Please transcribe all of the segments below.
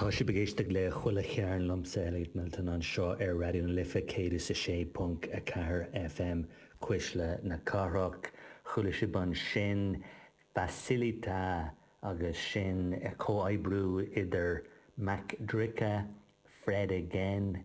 Tá sibh ag éisteacht le Chuile Chearn liomsa, Elliot Milton, anseo ar Raidió na Life 106.4 FM, Cuisle na Cathrach. Chuala sibh ansin Facilita agus sin comhoibriú idir Mac Drica, Fred again..,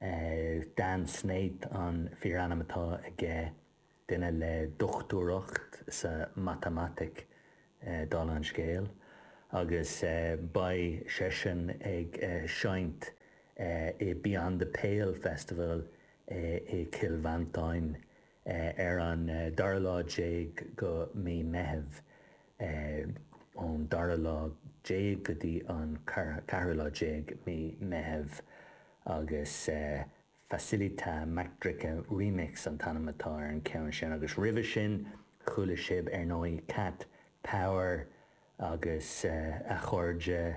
Is Dan Snaith an fíorainm atá aige, duine le dochtúireacht sa mhatamaitic, dála an scéil, agus beidh seisean ag seinnt i Beyond the Pale Festival i gCill Mhantáin Ar an dara lá déag de Mhí Meitheamh, ón dara lá déag go dtí an ceathrú lá déag Mí Meitheamh, agus Facilita Mac Drica Remix an t-ainm atá ar an cheann sin, agus roimhe sin chuala sibh ar ndóigh Cat Power agus a chairde,